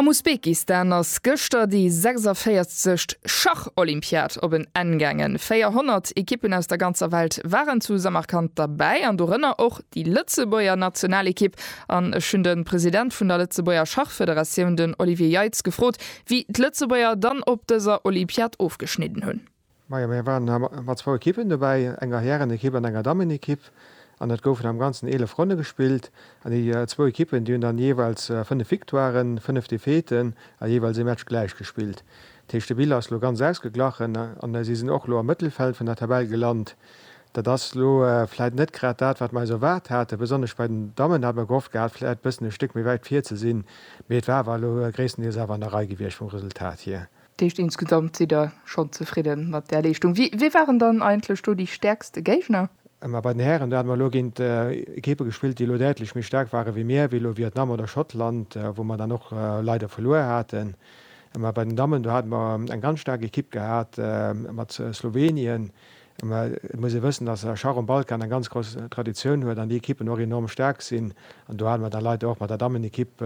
Am Usbekistan ass gëschter déi 46. Schach-Olympiad op en Enn gaangen. 400 Ekippen aus der ganzer Welt waren zu Samarkand derbäi an dorënner och déi Lëtzebuerger Nationalekipp. An ech hunn de President vun der Lëtzebuerger Schachfederatioun, den Olivier Jeitz, gefrot, wéi d'Lëtzebuerger dann op dëser Olympiad ofgeschnidden hunn. Majo, mir waren mat zwou Ekippen dobäi, enger Härenekipp an enger Dammenekipp, an et goufen am Ganzen 11 Ronne gespillt. An déi zwou Ekippen, déi hunn dann jeeweils 5 Victoiren, 5 Defaiteen a jeeweils ee Match gläich gespillt. Dat heescht, de Bilan ass elo ganz ausgeglachen an si sinn och elo am Mëttelfeld vun der Tabell gelant. Dat ass elo vläit net grad dat, wat mer eis erwaart haten. Besonnesch bei den Dammen hat mer gehofft gehat, vläit e bëssen e Stéck méi wäit vir ze sinn, mee et war awer elo gréisstendeels awer an der Rei gewiescht vum Resultat hier. Dat heescht, insgesamt sidd Der schonn zefridde mat där Leeschtung. Wie, wie waren dann eigentlech do déi stäerkste Géigner? Mä bei den Hären, do hate mer elo géint Ekippe gespillt, déi elo däitlech méi staark ware wéi mir, wéi elo Vietnam oder Schottland, wou mer dann och leider verluer haten. Mä bei den Dammen, do hate mer eng ganz staark Ekipp gehat mat Slowenien, Mä et muss ee wëssen, datt Schach um Balkan eng ganz grouss Traditioun huet an déi Ekippen och enorm staark sinn. An do hate mer da leider och mat der Dammenekipp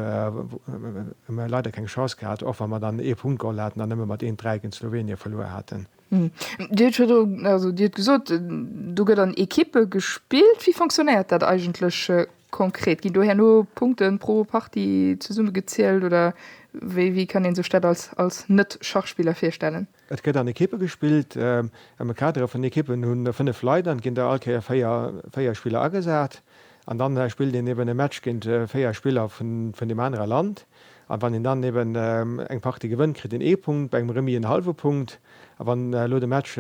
leider keng Chance gehat, och wa mer dann ee Punkt geholl haten an nëmme mat een Dräi géint Slowenien verluer haten. Dir hutt virdru, also Dir hutt gesot, do gëtt an Ekippe gespillt. Wéi fonctionnéiert dat eigentlech konkret? Ginn do herno Punkte pro Partie zesummegezielt oder wéi kann ee sech dat als Net-Schachspiller virstellen? Et gëtt an Ekippe gespillt. Am Kader vun Ekippen hu 5 Leit an et ginn der all Kéier 4, 4 Spiller agesat. An dann spillt een eben e Match géint 4 Spiller vun deem anere Land. An wann een dann eben eng Partie gewënnt, kritt een ee Punkt, bei engem Remis en hallwe Punkt. A wann elo de Match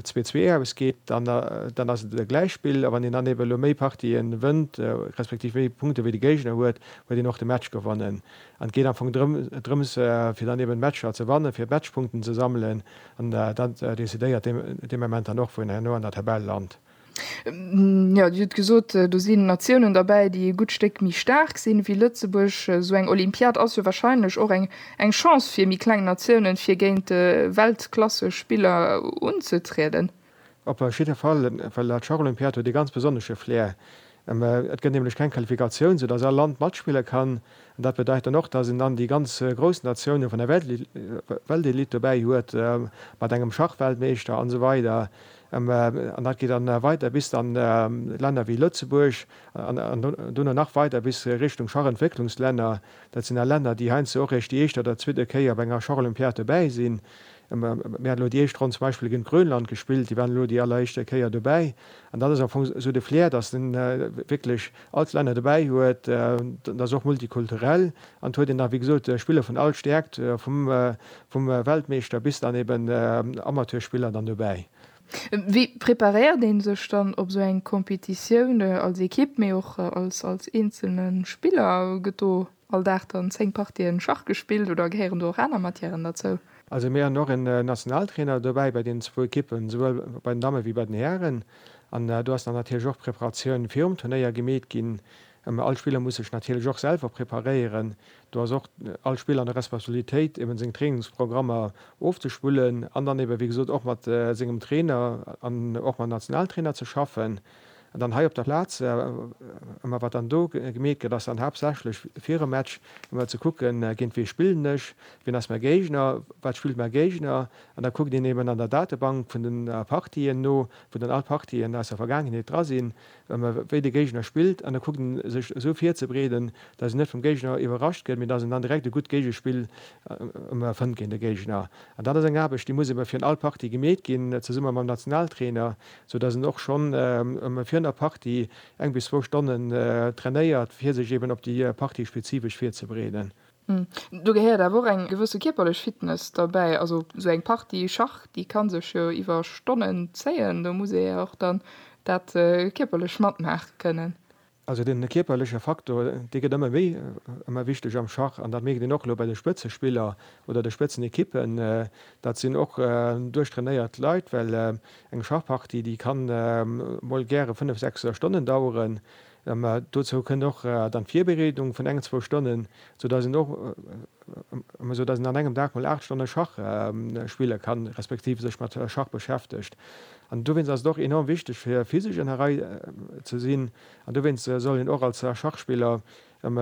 zwee, zwee ausgeet, dann ass et e Gläichspill. A wann een dann eben elo méi Partien wënnt, respektiv méi Punkte wéi de Géigner huet, huet een och de Match gewonnen. An et geet am Fong drëms, fir dann eben d'Matcher ze wannen, fir Matchpunkten ze sammelen. An dat decidéiert dee Moment dann och, wou een herno an der Tabell lant. Jo, Dir hutt gesot, do sinn Natiounen derbäi, déi e gutt Stéck méi staark sinn, wéi Lëtzebuerg. Esou eng Olympiad ass jo warscheinlech och eng Chance fir méi kleng Natiounen, fir géint Weltklassespiller unzetrieden. Op jidde Fall, well dat Schacholympiad huet ee ganz besonnesche Flair. Et gëtt nämlech keng Qualifikatioun, sou datt all Land matspille kann. An dat bedeit dann och, datt een dann déi ganz grouss Natiounen vun der Weltelite dobäi huet, mat engem Schachweltmeeschter an esou weider. An dat geet dann weider bis dann Länner wéi Lëtzebuerg an duerno nach weider bis Richtung Schachentwécklungslänner. Dat sinn all Länner, déi heiansdo och eréischt déi éischt oder zweet Kéier op enger Schacholympiad dobäi sinn. Mir haten elo déi éischt Ronn zum Beispill géint Grönland gespillt, déi waren elo déi alleréischte Kéier dobäi. An dann ass am Fong esou de Flair, datt en wierklech all d'Länner dobäi huet. Et ass och multikulturell an et huet een nach, wéi gesot, Spiller vun all Stäerkt, vum Weltmeeschter bis dann eben Amateurspiller dann dobäi. Wéi preparéiert ee sech dann op esou eng Competitioun als Ekipp, mee och als eenzelne Spiller? Gëtt do all Dag dann 10 Partien Schach gespillt oder gehéieren do och aner Matièren derzou? Also mir han och en Nationaltrainer dobäi bei den zwou Ekippen, souwuel bei den Dammen wéi bei den Hären, an do ass dann natierlech och d'Preparatioun virum Turnéier gemeet ginn. All Spiller muss sech natierlech och selwer preparéieren, do ass och all Spiller an der Responsabilitéit eben seng Trainingsprogrammer ofzespullen an dann eben wéi gesot och mat sengem Trainer an och mam Nationaltrainer ze schaffen. An dann hei op der Plaz, ëmmer wat dann do gemeet gëtt, ass dann haaptsächlech fir e Match ëmmer ze kucken, géint wee spillen ech, wien ass mäi Géigner, wat spillt mäi Géigner. An da kuckt een eben an der Datebank vun den Partien no, wou dann all Partien aus der Vergaangenheet dra sinn, wéi de Géigner spillt. An da kuckt ee sech esou virzebreeden, datt een net vum Géigner iwwerrascht gëtt, mee datt een dann direkt e gutt Géigespill ëmmer fënnt géint de Géigner. An dat ass eng Aarbecht, déi muss ebe fir all Partie gemeet ginn, zesumme mam Nationaltrainer, sou dass en och schonn virun der Partie eng bis zwou Stonnen trainéiert, fir sech eben op déi Partie spezifesch virzebereeden. Do gehéiert awer och eng gewësse kierperlech Fitness derbäi. Also sou eng Partie Schach, déi ka sech jo iwwer Stonnen zéien, do muss ee jo och dann dat kierperlech matmaache kënnen. Also den kierperleche Faktor, dee gëtt ëmmer méi ëmmer wichteg am Schach an dat mierkt een och elo bei de Spëtzespiller oder de Spëtzenequippen. Dat sinn och duerchtrainéiert Leit, well eng Schachpartie, déi kann mol gäre 5, 6 Stonnen daueren. Dozou kënnt och dann d'Virbereedung vun eng, zwou Stonnen, sou dass een och Sou dass een an engem Dag mol 8 Stonne Schach spille kann, respektiv sech mat Schach beschäftegt. An dowéinst ass et och enorm wichteg fir physesch an der Rei ze sinn. An dowéinst soll een och als Schachspiller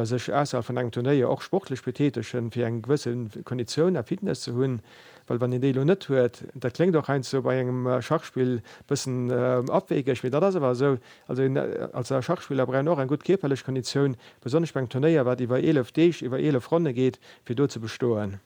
sech ausserhalb vun engem Turnéier och sportlech betätegen, fir eng gewësse Konditioun a Fitness ze hunn. Well wann een déi elo net huet, dat kléngt och heiansdo bei engem Schachspill e bëssen abwegeg, mee dat ass awer esou, Also een als Schachspiller brauch een och eng gutt kierperlech Konditioun, besonnesch beim Turnéier, wat iwwer 11 Deeg, iwwer 11 Ronne geet, fir do ze bestoen.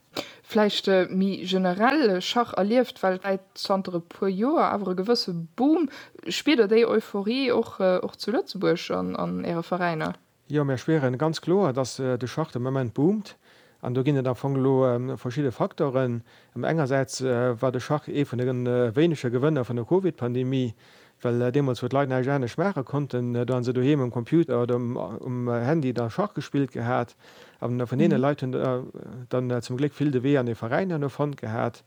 Vläicht méi generell, Schach erlieft weltwäit zanter e puer Joer awer e gewësse Boom. Spiert Der déi Euphorie och zu Lëtzebuerg an Äre Veräiner? Jo, mir spieren ganz kloer, dass de Schacht de Moment boomt. An do ginn et am Fong elo verschidde Facteuren. Engersäits war de Schacht ee vun de wéinege Gewënner vun der Covid-Pandemie, well deemools, wou d'Leit näischt anescht maache konnten, do hu se doheem um Computer oder um Handy da Schach gespillt gehat. A vun deene Leit hunn der dann zum Gléck vill de Wee an ee Veräin herno fonnt gehat.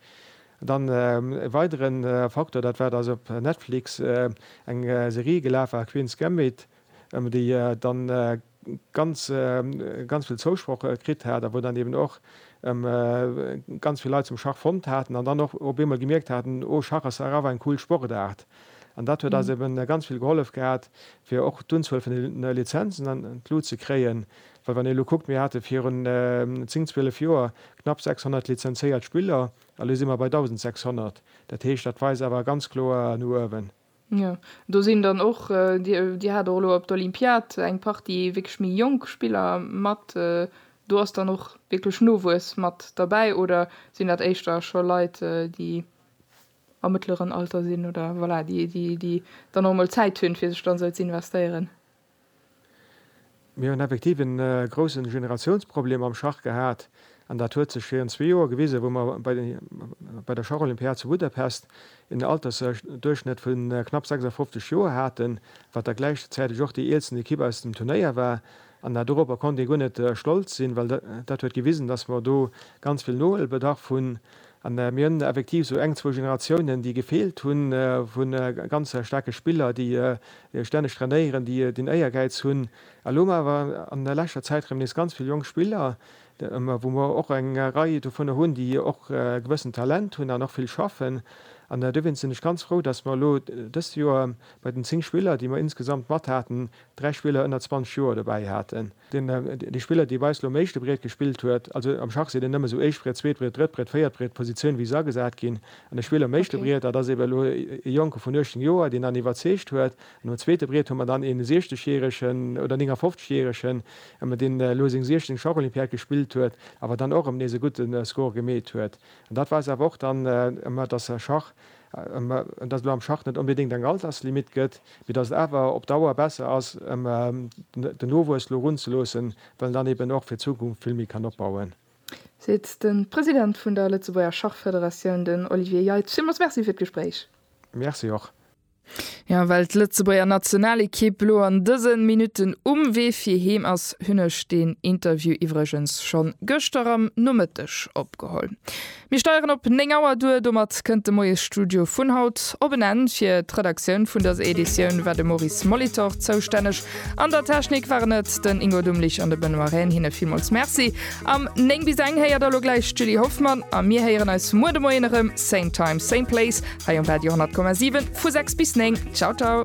An dann e weidere Facteur, dat war, dass op Netflix eng Serie gelaf war, Queen's Gambit, déi dann ganz ganz vill Zousproch kritt hat a wou dann eben och ganz vill Leit zum Schach fonnt haten an dann och op eemol gemierkt haten, oh Schach ass awer eng cool Sportaart. An dat huet eis eben ganz vill gehollef gehat fir och d'Unzuel vun de Lizenzen an d'Lut ze kréien, well wann een elo kuckt, mir hate virun 10, 12 Joer knapp 600 lizenzéiert Spiller, elo si mer bei 1.600, dat heescht, dat weist awer ganz kloer no uewen. Jo, do sinn dann och, Dir hat och elo op d'Olympiad eng Partie wierklech méi jonk Spiller mat. Do ass dann och wierklech Nowuess mat derbäi oder sinn dat éischter scho Leit, déi am mëttleren Alter sinn oder, voilà, déi dann och emol Zäit hunn, fir sech dann esou ze investéieren? Mir hunn effektiv e grousse Generatiounsproblem am Schach gehat. An dat huet sech virun zwee Joer gewisen, wou mer bei der Schacholympiad zu Budapest en Altersduerchschnëtt vu knapp 56 Joer haten, wat da gläichzäiteg och déi eelsten Ekipp aus dem Turnéier war. An doropper konnt ee guer net stolz sinn, well dat huet gewisen, dass mer do ganz vill Nohuelbedarf hunn. An mir hunn effektiv esou eng, zwou Generatiounen, déi gefeelt hunn, vu ganz staarke Spiller, déi stänneg trainéieren, déi den Éiergäiz hunn. Elo hu mer awer an der leschter Zäit erëm nees ganz vill jonk Spiller, wou mer och eng Rei dovunner hunn, déi och e gewëssent Talent hunn an och vill schaffen. An dowéinst sinn ech ganz frou, datt mer elo dëst Joer bei den zéng Spiller, déi mer insgesamt mat haten, dräi Spiller ënner 20 Joer dobäi haten. Dee Spiller, dee bei eis elo um éischte Briet gespillt huet, also am Schach seet een nëmme esou éischt Briet, zweet Briet, drëtt Briet, véiert Briet, d'Positioun, wéi se agesat ginn. An de Spiller um éischte Okay. Briet, dat ass ebe elo e Jonke vun 18 Joer, deen dann iwwerzeegt huet. An um zweete Briet hu mer dann ee 60 Jäeregen oder 59 Jäeregen, ebe deen elo seng 16. Schacholympiad gespillt huet, awer dann och erëm nees e gudde Score gemeet huet. An dat weist awer och dann, ebe datt Schach an datt et elo am Schach net onbedéngt eng Alterslimit gëtt, mee datt et awer op Dauer besser ass, ëm den Nowuess elo runzeloossen, well en dann eben och fir d'Zukunft vill méi kann opbauen. Seet de President vun der Lëtzebuerger Schachfederatioun, den Olivier Jeitsch. Villmools Merci fir d'Gespréich. Merci och. Jo, well d'Lëtzebuerger Nationalekipp elo an dëse Minutten um Wee fir heem ass, hunn ech deen Interview iwwregens schonn gëschter am Nomëtteg opgeholl. Mir steieren op 9 Auer duer. Domat kënnt de Moiesstudio vun haut op en Enn. Fir d'Redaktioun vun dëser Editioun war de Maurice Molitor zoustänneg. An der Technik waren et den Ingo Dumlich an de Benoît Rehn. Hinne villmools Merci. Am 9 bis eng héiert elo gläich d'Julie Hoffmann a mir héieren eis muer de Moien erëm, same time, same place hei um Radio 10,7 vu 6 bis 9. Ciao ciao.